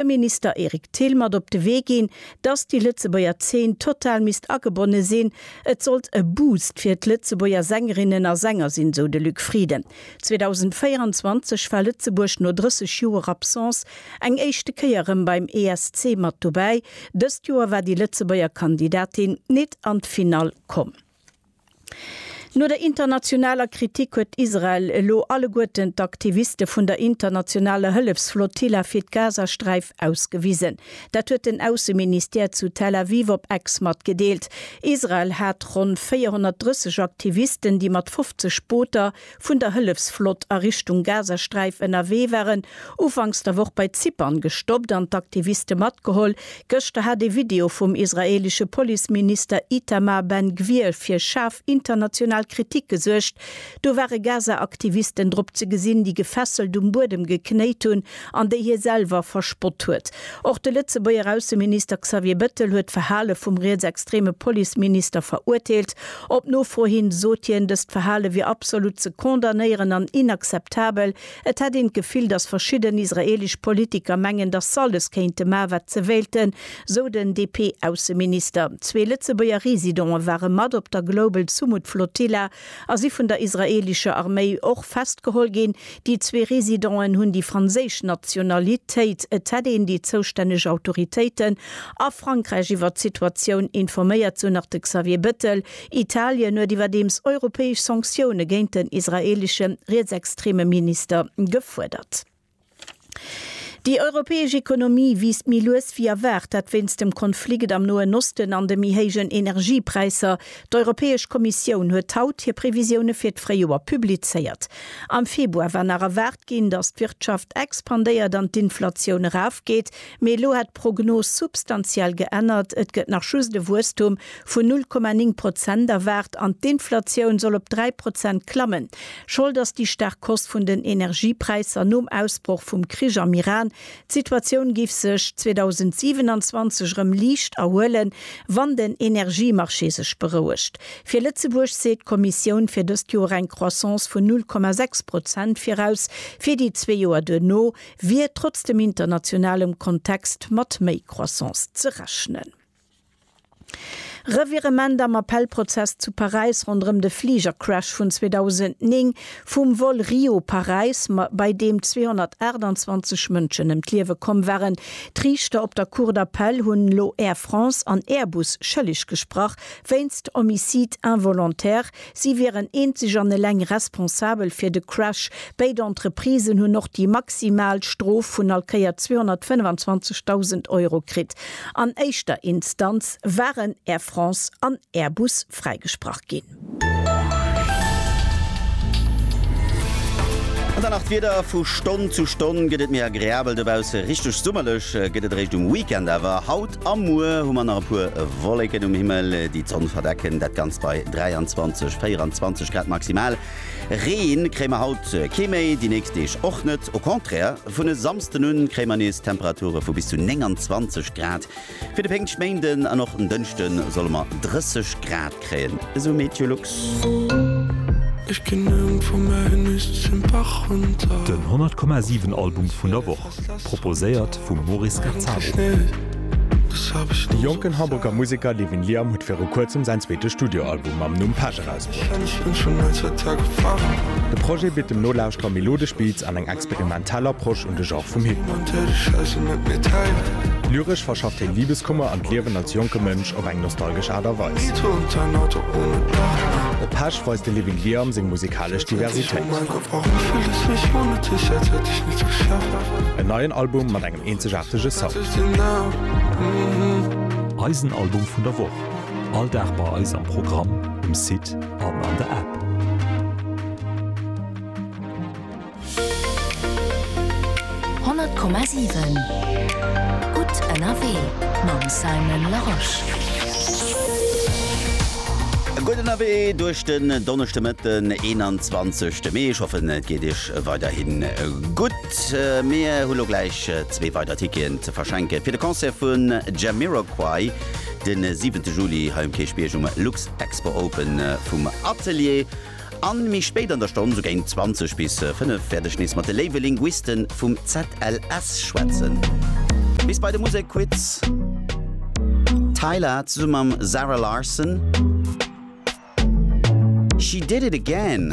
dem Minister Eric Thill mat op de Wee ginn, dass déi Lëtzebuerger Zeen total misst agebonne sinn. Et sollt e Boost fir d'Lëtzebuerger Sängerinnen a Sänger sinn, sou de Luc Frieden. 2024 war Lëtzebuerg no 30 Joer Absence eng éischte Kéier erëm beim ESC mat dobäi. Dëst Joer war déi Lëtzebuerger Kandidatin nit an d'Finall komm. No der internationaler Kritik huet Israel elo alleguerten d'Aktiviste vun der internationaler Hëllefsflotilla fir d'Gazasträif ausgewisen. Dat huet den Ausseministère zu Tel Aviv op Ex matgedeelt. Israel hat ronn 430 Aktivisten, déi mat 50 Booter, vun der Hëllefsflott a Richtung Gazasträif ënnerwee waren, ufanks der Woch bei Zypern gestoppt an d'Aktiviste matgeholl. Gëschter hat ee Video vum israeelesche Policeminister Itamar Ben Gvir fir schaarf international Kritik gesuergt. Do ware Gaza-Aktivisten drop ze gesinn, déi gefesselt um Buedem geknéit hunn an déi hie selwer verspott huet. Och de Lëtzebuerger Ausseminister Xavier Bettel huet d'Verhale vum rietsextreme Policeminister verurteelt. Op Nofro hin sot hien, dëst Verhale wier absolut ze condamnéieren an inakzeptabel. Et hätt een d'Gefill, datt verschidden israeelesch Politiker mengen, datt s'alles kéinte man, wat se wéilten, sou den DP-Ausseminister. Zwee Lëtzebuerger Residente ware mat op der Global Sumud Flotilla a si vun der israeelescher Arméi och festgeholl ginn. Déi zwee Residenten hunn déi franséisch Nationalitéit. Et hätt een déi zoustänneg Autoritéiten a Frankräich iwwert d'Situatioun informéiert, sou nach de Xavier Bettel. Italien huet iwwerdeems europäesch Sanktioune géint den israeelesche rietsextreme Minister gefuerdert. Déi europäesch Ekonomie wiisst méi lues wéi erwaart, dat wéinst dem Konflikt am Noen Osten an de méi héijen Energiepräisser. D'Europäesch Kommissioun huet haut hir Previsioune fir d'Fréijoer publizéiert. Am Februar war nach erwaart ginn, datt d'Wirtschaft expandéiert an d'Inflatioun erafgeet, mee elo hätt d'Prognos substantiell geännert, et gëtt nach just e Wuesstum vun 0,9 Prozent erwaart an d'Inflatioun soll op 3 Prozent klammen. Schold ass déi staark Hausse vun den Energiepräisser nom Ausbroch vum Krich am Iran, D'Situatioun géif sech 2027 erëm liicht erhuelen, wann den Energiemarché sech berouegt. Fir Lëtzebuerg seet d'Kommissioun fir dëst Joer eng Croissance vun 0,6 Prozent viraus, fir déi zwee Joer duerno wier trotz dem internationalem Kontext mat méi Croissance ze rechnen. Revirement am Appellprozess zu Paräis ronderëm de Fligercrash vun 2009 vum Vol Rio-Paräis, bei deem 228 Mënschen ëm d'Liewe komm waren. D'Riichter op der Cour d'Appel hunn elo Air France an Airbus schëlleg gesprach wéinst Homicide involontaire. Si wieren eenzeg an eleng responsabel fir de Crash. Béid Entreprisen hunn och déi maximal Strof vun all Kéier 225.000 Euro kritt. An éischter Instanz waren Air France an Airbus fräigesprach ginn. An dann nach d'Wieder, Vu Stonn zu Stonn gëtt et méi agreabel dobausse. Richteg summerlech gëtt et eréischt um Weekend awer. Haut A muer hu mer nach e puer Wolleken um Himmel, déi d'Sonn verdecken. Dat Ganzt bei 23, 24 Grad maximal. Ree kréie mer haut kee méi, déi nächst Deeg och net. Au contraire, vun e Samsden un kréie mer nees Temperature vu bis zu 29 Grad. Fir de Péngschtméinden an och den Dënschde solle mer 30 Grad. kréien esou Meteolux. Ech gin ëm vu mär Hünnest zum Bach runter. Den 100,7 Album vun der Woch, proposéiert vum Maurice Gazzaro. De jonken Hamburger Museker Levin Liam huet viru kuerzem säin zweete Studioalbum mam Numm Pech erausbruecht. De Projet bitt dem Nolauschterer melodesch Beats an eng experimentell Soundgebung. Tell Approche un de Genre vum Hip-Hop. Lyresch verschafft hien Libeskummer an d'Liewen als jonke Mënsch op eng nostalgesch Aart a Weis. Op Pesch weist de Living Liam seng musikalesch Diversitéit. En neien Album mat engem eenzegaartege Sound. Eisen Album vun der Woch, all Dag bei eis am Programm, um Site an an der App. 100,7 Gutt ënnerwee mam Simon Larosche. Gutt ënnerwee duerch den Donneschdemëtten, 21 Mee. Ech hoffen, et geet Iech weiderhi gutt. Mir hu lo gläich zwee weider Ticketen ze verschenke fir de Concert vu Jamiroquai de 7 Juli hei um Kierchbierg um Luxexpo Open vum Atelier. A méi spéit an der Stonn, sou géint 20 bis 5, wäert ech nees mat de léiwe Linguiste vum ZLS schwätzen. Bis bei de Musekquiz. Tyla zesumme mam Zara Larsson, She Did It Again.